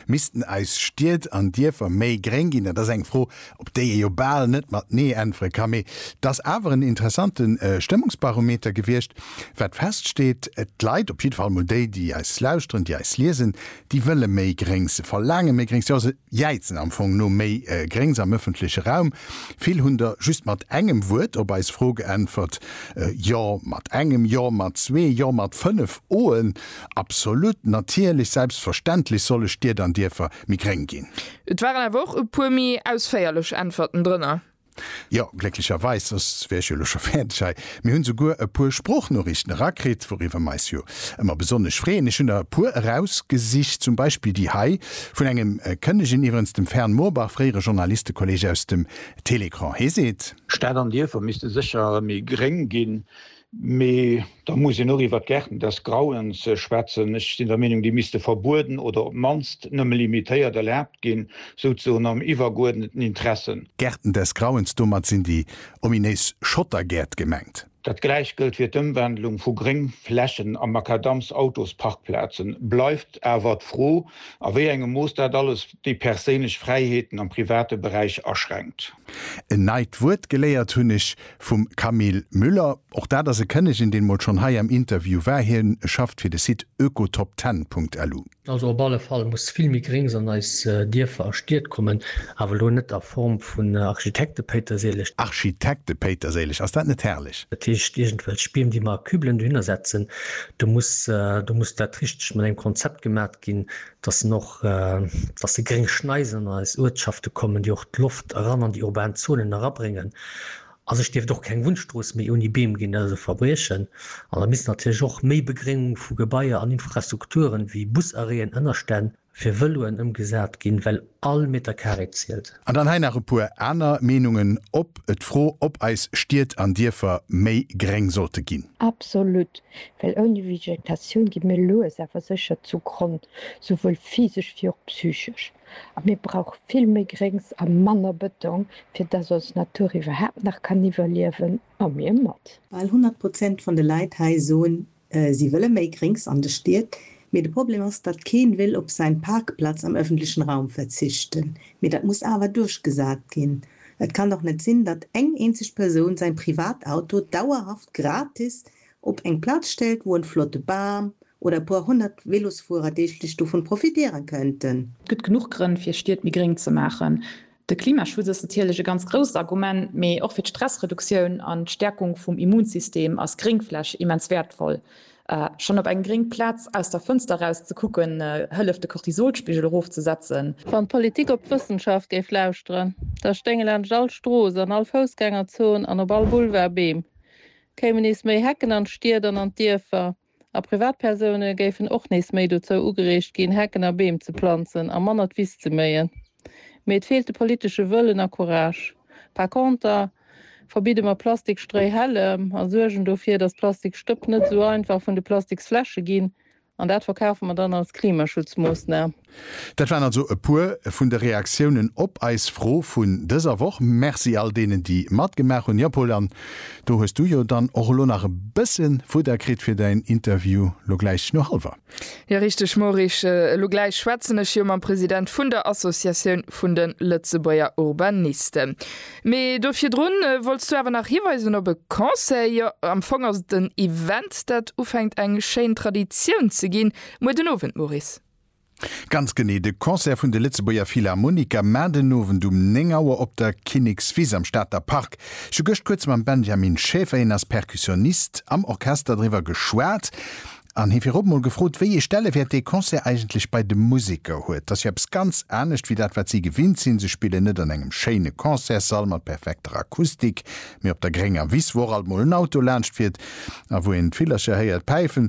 Missten eis Stied an Dierfer méi gréng ginn? Dat ass eng Fro, op déi ee jo bal net mat Nee äntwere ka. Mee et ass awer en interessante Stëmmungsbarometer gewiescht. Wat feststeet, D'Leit, op jidde Fall mol déi, déi eis lauschteren, déi eis liesen, déi wëlle méi Gréngs. Se verlaange méi Gréngs, jo se jäizen am Fong no méi Gréngs am ëffentleche Raum. Vill hunn der just mat engem Wuert op eis Fro geäntwert, Jo mat engem, Jo mat zwee, Jo mat fënnef Oen. Absolut, natierlech, selbstverständlech solle Stied an Dierfer méi gréng ginn. Et waren awer och e puer méi ausféierlech Äntwerten drënner. Jo, glécklecherweis, soss wär ech jo elo scho fäerdeg hei. Mir hunn souguer e puer Sproochnoriichten erakritt, wouriwwer mer eis jo ëmmer besonnesch freeën. Ech hunn der e puer erausgesicht, zum Beispill déi hei vun engem Kënnegen, iwwerens dem Fern Moorbach, fréiere Journalistekolleeg aus dem Télécran. Hee seet. Stad an Dierfer misste sécher méi gréng ginn. Mee da muss een och iwwert d'Gärten des Grauens schwätzen. Ech sinn der Meenung, déi misste verbueden oder op d'mannst nëmme limitéiert erlaabt ginn, souzesoen am iwwergeuerdneten Interesse. Gärten des Grauens, domat sinn déi ominéis Schottergäert gemengt. Dat gläicht gëllt fir d'Ëmwandlung vu Gréngflächen a Makadamsautosparkplazen. Bleift awer d'Fro, a wéi engem Mooss dat alles déi perséinlech Fräiheeten am private Beräich aschränkt. En neit Wuert geléiert hunn ech. Vum Camille Müller. Och dat ass e Kënnegen, deen emol schonn hei am Interview war. Hien schafft fir de Site oekotopten.lu. Also op alle Fall muss vill méi Gréngs an eis Dierfer a Stied kommen, awer elo net a Form vun Architektepéiterséileg. Architektepéiterséileg, ass dat net herrlech? Dat heescht iergendwelch Biem, déi mer a Kübelen dohinner setzen. Do muss, do muss dat richteg mat engem Konzept gemaat. ginn, dass en och, dass déi gréng Schneisen an eis Uertschafte kommen, déi och d'Loft eran an déi urban Zonen erabréngen. A sech dierft och keng Wunnstrooss méi ouni Beem ginn, dat ass e Verbriechen. An da misst natierlech och méi Begréngung vu Gebaier an Infrastrukturen, wéi Busarrêten, Ënnerstänn fir Vëloen ëmgesat ginn, well All Meter Carré zielt. An dann hei nach e puer aner Meenungen op d'Fro, ob eis Stied an Dierfer méi gréng sollte ginn. Absolut, well ouni Vegetatioun gi mir lues awer sécher zu Gronn, souwuel physesch wéi och psychesch. A mir brauche vill méi Gréngs a manner Bëtong, fir dass ons Natur iwwerhaapt nach kann iwwerliewen, a mir mat. Bal 100 Prozent van de Leit hei soen Si wëlle méi Gréngs an de Stied, mee de Problem ass, datt keen wéll op säin Parkplatz am öffentlechen Raum verzichten. Mee datt muss awer duerchgesaat ginn. Et kann dach net sinn, datt eng eenzeg Persoun säin Privatauto dauerhaft gratis op eng Platz stellt, wou en flotte Baam oder e puer honnert Velosfuerer deeglech dovun profitieren könnten. Et gëtt genuch Grënn fir Stied méi gréng ze maachen. De Klimaschutz ass natierlech e ganz grousst Argument, mee och fir d'Stressreduktioun an d'Stäerkung vum Immunsystem ass Gréngfläch immens wäertvoll. Schonn op eng gréng Plaz aus der Fënster raus ze kucken, hëlleft de Cortisolspigel erofzesetzen. Wann d'Politik op d'Wëssenschaft géif lauschteren, da stéinge laanscht all Strooss, an all Foussgängerzon an op all Boulevard Beem, kéimen nees méi Hecken an d'Stied an an d'Dierfer. A Privatpersoune géifen och nees méi dozou ugereegt ginn, Hecken a Beem ze planzen a manner d'Wiss ze méien. Mee et feelt de politesche Wëllen a Courage. Par conter verbidde mer Plastikstréihällem a suergen dofir, datt Plastikstëpp net esou einfach vun de Plastiksfläsche ginn. An dat verkafe mer dann als Klimaschutzmoossnam. Dat waren also e puer vun de Reaktiounen op eis Fro vun dëser Woch. Merci all deenen, déi matgemaach hunn. Jo Paul, an do hues du jo dann och elo nach e bësse Fudder kritt fir däin Interview elo gläich no hallwer. Jo richteg Maurice, elo gläich schwätzen ech jo mam President vun der Associatioun vun de Lëtzebuerger Urbanisten. Mee do virdrun wollts du awer nach hiweisen op e Concert. Jo am Fong ass et en Event, dat ufänkt eng schéin Traditioun ze ginn, muer den Owend Maurice. Ganz genee, de Concert vun de Lëtzebuerger Philharmoniker, mar den Owend um 9 Auer op der Kinnekswiss am Stater Park. Ech hu gëscht kuerz mam Benjamin Schäfer, hien ass Percussionist am Orchester, driwwer geschwat an hie virop mol gefrot, wéi ee Stellewäert dee Concert eigentlech bei de Museker huet. T'ass jo eppes ganz anescht wéi dat, wat si gewinnt sinn. Se spillen net an engem schéine Concertssall mat perfekter Akustik, mee op der grénger Wiss, wou och alt mol en Auto laanscht fiert a wou een d'Villercher héiert päifen.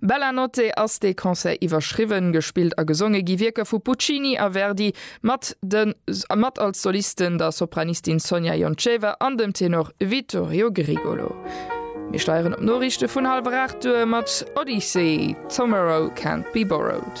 Bella notte ass dee Concert iwwerschriwwen. Gespillt a gesonge gi Wierker vu Puccini a Verdi, mat de mat als Solisten der Sopranistin Sonia Jonceva an dem Tenor Vittorio Grigolo. Mir steieren op d'Noriichte vun hallwer 8 duer mat Odyssey, Tomorrow Can't Be Borrowed.